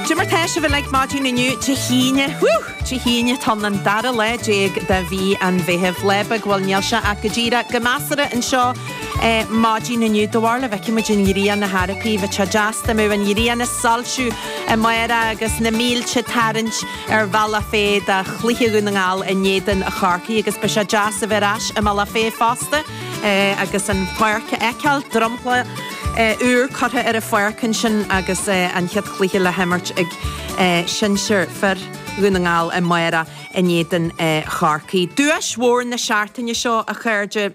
Cad é mar atá sibh uilig maidin inniu, Dé hAoine. Woo! Dé hAoine tá an dara lá déag de mhí an Mheithimh. Lá beag, bhuel níl sé ach go díreach go measartha anseo maidin inniu. Do bharr le bhfeicfidh muid an ghrian na hEorpaí. Bheadh sé deas dá mbeadh an ghrian ag soilsiú amárach agus na mílte ag tarraingt ar Bhealach Féich do chluiche Dhún na nGall in éadan Chorcaí agus beidh sé deas a bheith ar ais i mBealach Féich fosta agus an pháirc a fheiceáil. Dromchla. úr curtha ar an pháirc ansin agus an chéad chluiche le himirt ag sinsir fir Dhún na nGall amárach in éadan Chorcaí. Duais mhór na seachtaine seo, a chairde,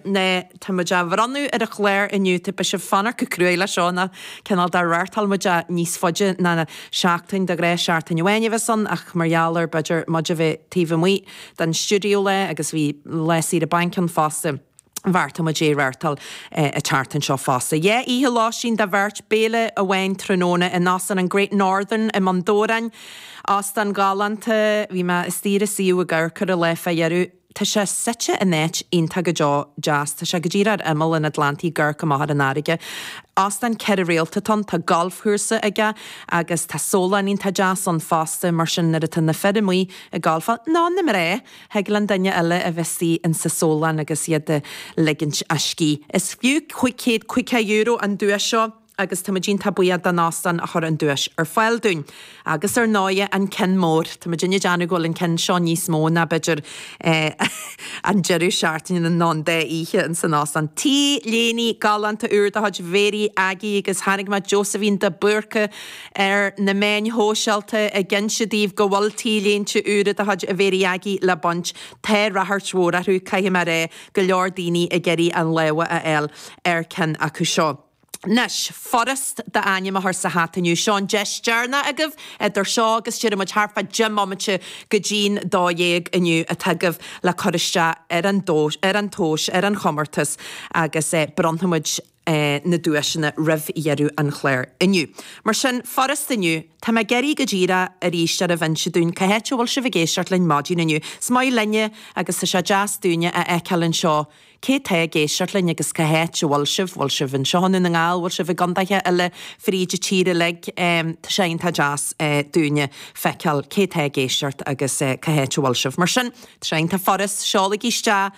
tá muid á bhronnadh ar an gclár inniu. Tá sibh ag fanacht go cruaidh leis seo, nó cineál de reáchtáil muid é níos faide ná seachtain, de ghnáth seachtain amháin a bhíos ann ach mar gheall ar b'fhéidir muid a bheith taobh amuigh den stiúideo lá agus bhí lá saoire bainc ann fosta. bheartaigh muid é a reáchtáil an tseachtain seo fosta. Dhá oíche lóistín do bheirt, béile amháin tráthnóna in Óstán an Great Northern i mBun Dobhráin. Óstán galánta. Bhí mé istigh ar a suíomh i gcomhair cur i láthair fá dheireadh. Tá sé suite in áit iontach go deo deas. Tá sé go díreach ar imeall an Atlantaigh ag amharc amach ar an fharraige. Óstán ceithre réalta atá ann. Tá galfchúrsa aige agus tá sólann iontach deas ann fosta mar sin nuair atá na fir amuigh ag galfáil, nó na mná! Thig le an duine eile a bheith istigh ins a' sólann agus iad ag ligint a scíth. Is fiú cúig céad caoga euro an duais seo agus táimid iontach buíoch don Óstán a chuir an duais ar fáil dúinn. Agus ar ndóighe an ceann mór. Tá muidinne ag déanamh go bhfuil an ceann seo níos mó ná b'fhéidir an deireadh seachtaine nó an dá oíche ins an Óstán. T-léine galánta úr de chuid Mhary Aggie agus chonaic mé Josephine de Búrca, ar na meáin shóisialta ag inse daoibh go bhfuil T-léinte úra de chuid A Mhary Aggie le baint. Tá ráchairt mhór orthu, caithfidh mé a rá, go leor daoine ag iarraidh a lámha a fháil ar ceann acu seo. Anois, furast d'ainm a chur sa hata inniu. Seo an deis deireanach agaibh, idir seo agus déarfaidh muid thart fá deich mbomaite go dtí'n dó dhéag inniu atá agaibh le cur isteach ar an dó, ar an tomhas, ar an chomórtas agus bronnfaimid, na duaiseanna roimh dheireadh an chláir inniu. Mar sin, furast inniu. Tá mé ag iarraidh go díreach arís oraibh inse dúinn cá háit a bhfuil sibh ag éisteacht linn maidin inniu. Is maith linne agus tá sé deas dúinne a fheiceáil anseo cé tá ag éisteacht linn agus cá háit a bhfuil sibh. Bhfuil sibh anseo i nDún na nGall? Bhfuil sibh i gcondaetha eile fríd an tír uilig? Tá sé iontach deas dúinne feiceáil cé tá ag éisteacht agus cá háit a bhfuil sibh. Mar sin, tá sé iontach furast. Seolaigí isteach.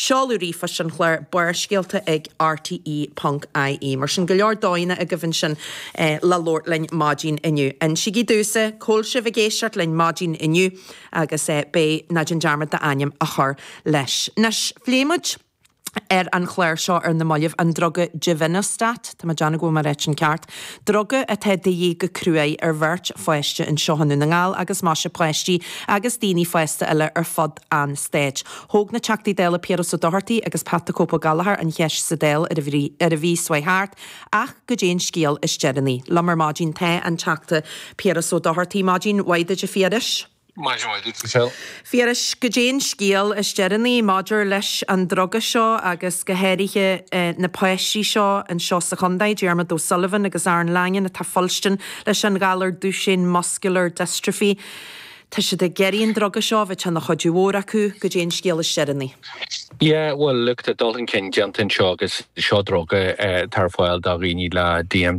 Seoladh ríomhphoist an chláir Barrscéalta ag RTÉ.ie. Mar sin, go leor dóigheanna agaibh ansin le labhairt linn maidin inniu. Insígí domhsa c'fhuil sibh ag éisteacht linn maidin inniu agus beidh ná déan dearmad d'ainm a chur leis. Anois, phléigh muid ar an chlár seo ar na mallaibh an druga Givinostat, tá mé ag déanamh go bhfuil mé á ráit i gceart, druga atá de dhíth go cruaidh ar bheirt pháiste anseo i nDún na nGall agus maise páistí agus daoine fásta eile ar fud an Stáit. Thóg na Teachtaí Dála Piaras Ó Dochartaigh agus Pat the Cope Ó Gallchóir an cheist sa Dáil ar an mhí, ar an mhí seo a chuaigh thart, ach cad é an scéal is deireanaí? Liom ar maidin tá an Teachta Piaras Ó Dochartaigh, maidin mhaith duit a Phiarais. Maidin mhaith duit a Mhichelle. Phiarais, cad é an scéal is deireanaí maidir leis an druga seo agus go háirithe na páistí seo anseo sa chontae, Diarmuid O'Sullivan agus Aaron Langan atá ag fuilstin leis an ghalar Duchenne Muscular Dystrophy. Tá siad ag iarraidh an druga seo a bheadh ina chuidiú mhór acu, cad é an scéal is deireanaí. Yeah, bhuel, look, tá dul chun cinn déanta anseo agus seo druga atá ar fáil do dhaoine le DMD.